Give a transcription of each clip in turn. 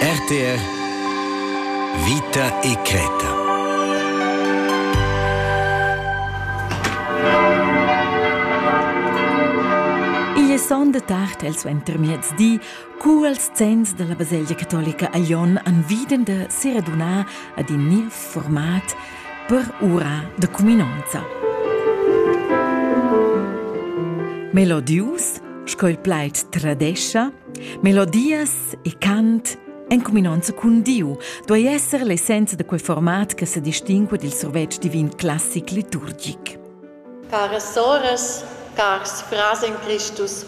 RTR Vita e Creta sonda tard el suentermiez di, cu els zenns della baselgia catolica a Jon an viden de seraduna ad in nil format per ura de cuminonza. Melodius, sco il plaid tradescia, Melodias e cant en cuminonza cun Diu duei esser l'essenza da quei format che sedistingua dil survetsch divin classic liturgic. Caras soras, cars frars in Christus,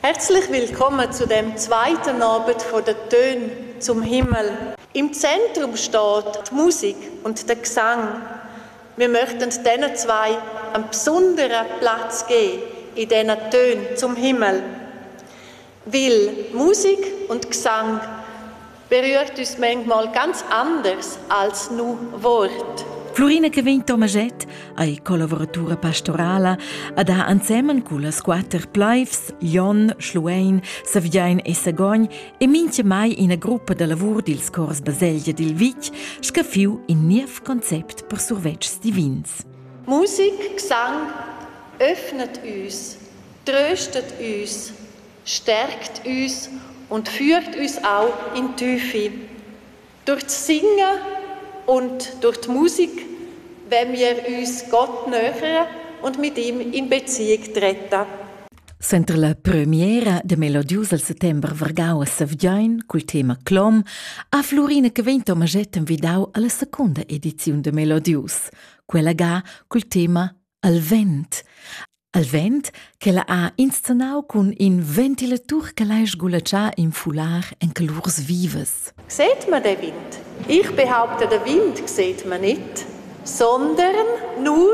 herzlich willkommen zu dem zweiten Abend von der Töne zum Himmel. Im Zentrum steht die Musik und der Gesang. Wir möchten denen zwei einen besonderen Platz geben in diesen Tönen zum Himmel. Weil Musik und Gesang berührt uns manchmal ganz anders als nur Wort. Florina che vegn Tomaget ei collaboratura pastorala a da ensemen cullas quater plaivs Jon, Schluein, Saviein e Sagogn e minchemai ina gruppa da lavur dils cors baselgia dil vitg scaffiu in niev concept per survetschs divins. Musik, Gesang, öffnet uns, tröstet uns, stärkt uns und führt uns auch in Tüfi. Durch das Singen und durch die Musik wenn wir uns Gott nähern und mit ihm in Beziehung treten. Center la premiera de melodius al settember vargau a Savgin cul tema Clom ha Flurina che vegn Tomaget envidau alla secunda ediziun de Melodius, quella ga cul tema Al vent. Al vent che la ha inscenau cun in ventilatur che l'ha sgulaccià in fular en calurs vivas. Seht man den Wind? Ich behaupte, den Wind seht man nicht, sondern nur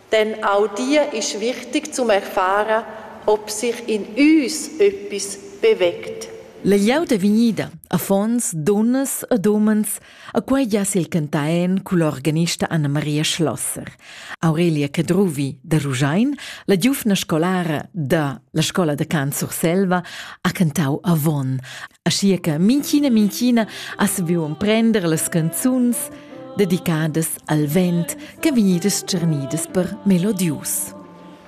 Denn auch dir ist wichtig zum erfahren, ob sich in uns etwas bewegt. La glieud è vegnida, affons, dunnas ed umens, a quei gia sil cantaen cul organista Anna-Maria Schlosser. Aurelia Cadruvi da Ruschein, la giuvna scolara da la scola da cant Surselva, ha cantau avon. Aschia che minchina minchina ha saviu emprender las canzuns dedicadas al vent che vegnidas tscharnidas per melodius.